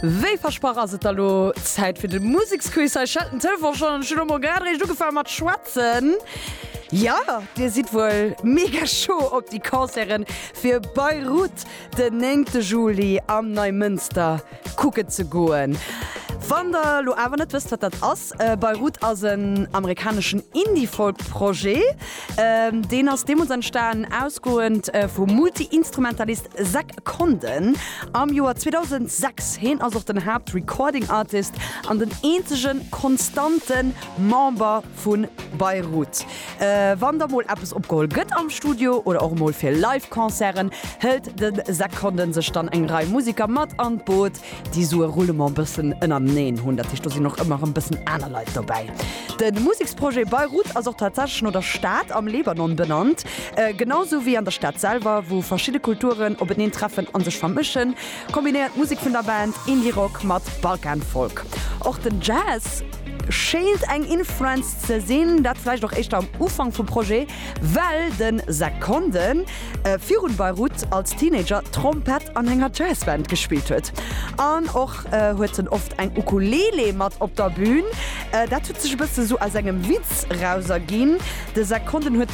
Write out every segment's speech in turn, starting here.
Wéi versprach ass et da lo Zäit fir de Museksquiz hei. Stellt den Telefon schonn an ech hunn elo mol grad eréischt ugefaangen mat schwätzen. Jo, Dir sidd wuel mega choo op déi Concerten fir Bayreuth den 9 Juli am Neimënster. kucken ze goen. Wann der elo awer net wësst wat dat ass, Beirut ass en amerikaneschen Indie-Folk-Projet. Deen ass deemools entstanen ausgoend vum Multi-Instrumentalist Zack Condon am Joer 2006. Hien ass och den Haapt-Recording-Artist an den eenzege konstante Member. vu Beirut. Wann da mol eppes opgeholl gëtt am Studio oder och emol fir Live-Concerten, hëlt de Zach Condon sech dann eng Rei Museker mat an d'Boot, déi esou e Roulement e bëssen ënnerneen hunn. Dat heescht, do sinn och ëmmer erëm e bëssen aner Leit dobäi. De Museksprojet Beirut ass och tatsächlech no der Stad am Libanon benannt, genau esou wéi an der Stad selwer, wou verschidde Kulturen openeen treffen a sech vermëschen. Kombinéiert d'Musek vun der Band Indie-Rock mat Balkan-Folk. Och den Jazz schéint eng Influenz ze sinn, dat vläicht och éischter am Ufank vum Projet, well de Seconde virun Beirut als Teenager Trompett an enger Jazzband gespillt huet. An och huet en oft eng Ukulele mat op der Bün. Dat huet sech e bësse sou aus engem Witz rauserginn. De Sekonden huet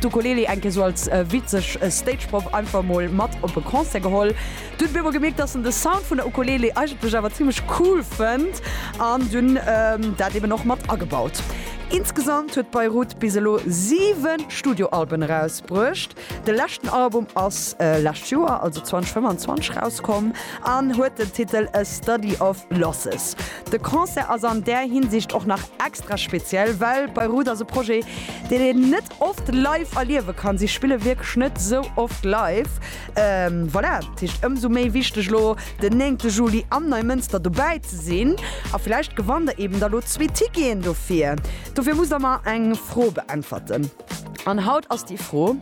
d'Ukulele eng Kéier sou als witzeg Stageprop einfach mol mat op e Concert geholl. Du huet op eemol gemierkt, dass en de Sound vun der Ukulele eigentlech awer zimmlech cool fënnt an dunn dat eben och mat agebaut. Insgesamt huet Beirut bis elo 7 Studioalben erausbruecht. De leschten Album ass lescht Joer, also 2025 rauskomm an huet den Titel A Study of Losses. De Concert ass an där Hinsicht och nach extra speziell, well Beirut ass e Projet, deen een net oft live erliewe kann. Si spille wierklech net sou oft live. Voilà, dat heescht ëmsou méi wichteg elo den néngte Juli am Neimënster dobäi ze sinn. A villäicht gewannt der eeben da lo zwee Ticketen dofir. Dofir musst der mer eng Fro beäntwerten. An haut ass déi Fro,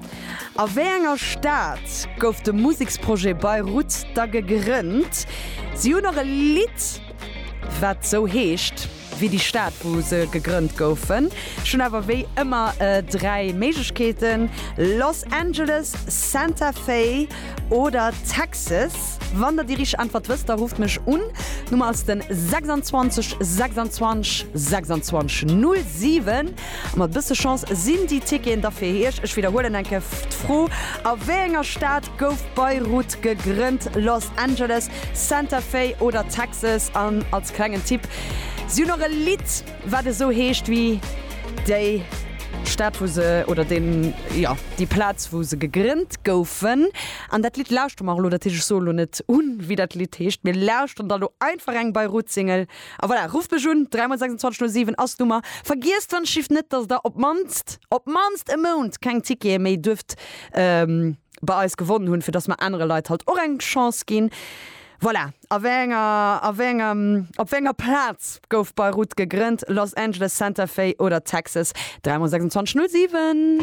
A wéi enger Stad gouf de Museksprojet Beirut da gegrënnt? Si hunn och e Lidd, wat sou heescht wéi déi Stad, wou se gegrënnt goufen. Ech hunn awer wéi ëmmer dräi Méiglechkeeten, Los Angeles, Santa Fe oder Texas. Wann der déi richteg Äntwert wësst, da rufft mech un. D'Nummer ass den 26 26 26 07. Mat e bësse Chance sinn déi Ticketen da fir Iech. Ech widderhuelen eng Kéier d'Fro, A wéi enger Stad gouf Beirut gegrënnt, Los Angeles, Santa Fe oder Texas? An als klengen Tipp, Si hunn och e Lidd, wat esou heescht wéi déi Stad, wou se, oder deen, jo, déi Plaz, wou se gegrënnt goufen. An dat Lidd lauschtere mer elo. Dat heescht, ech soen elo net un, wéi dat Lidd heescht. Mir lauschteren da elo einfach eng Beirut-Single. A voilà, rufft mech un, 3 mol 26 null 7 ass d'Nummer. Vergiesst wann ech schiff net, dass der op d'mannst, op d'mannst e Mount keng Tickete méi duerft bei eis gewonnen hunn, fir dass mer anere Leit halt och eng Chance ginn. Voilà, a wéi enger, a wéi engem, op wéi enger Plaz gouf Beirut gegrënnt? Los Angeles, Santa Fe oder Texas? 3 mol 26 null 7.